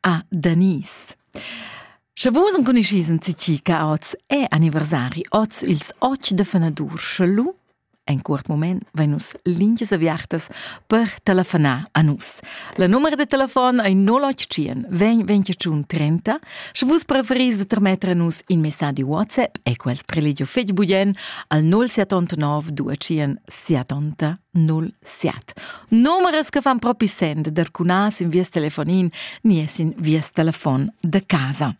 Ah, Denise. Sche vus enconuschis in citi che oz è anniversari, oz ils otg de fenadur, sche lu en curt moment vein nus lingias aviartas per telefonar a nus. La numero de telefon ei 081 20 21 30. Sche vus preferis de trametter a nus in messaggi WhatsApp e quels prelegio fetg bugen al 079 2 70 07. Numerers che fan propi send der cunas in vies telefonin ni es in vies telefon da casa.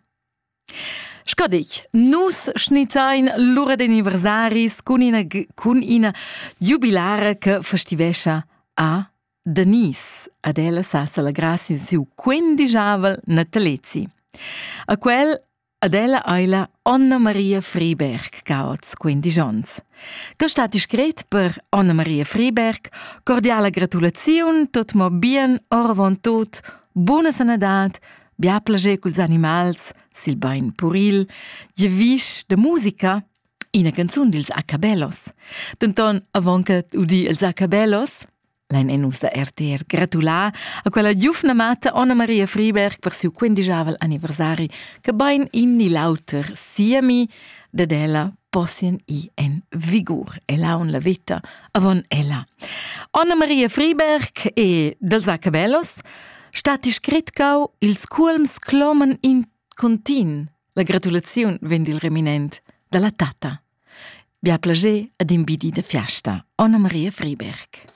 Sco dich, nus schnitzain l'ura dei anniversaris cun ina, cun ina giubilara che festivescha a Denise. Ad ella sa celebrar siu quindigiavel natalezi. A quel Ad ella eila Anna Maria Friberg caots quindisch ons. Que stat discret per Anna Maria Friberg, cordiala gratulaziun, tot mo bien, oravant tot, buna sanadad, bia plager culs animals, sil bain puril, gievisch de musica, ina canzun dils Acabellos. Denton, avant che udì els Acabellos, Lein en nus da RTR gratulà a quella giufna mata Anna Maria Friberg per siu quindigiavel anniversari che bein in ni l'auter siemi dad ella possien i en vigur e laun la vita avon ella. Anna Maria Friberg e dels Acabellos stati scritcau ils culms clomen in continu la gratulaziun vend il reminent dalla tata. Bia plager ad imbidi de fiasta, Anna Maria Friberg.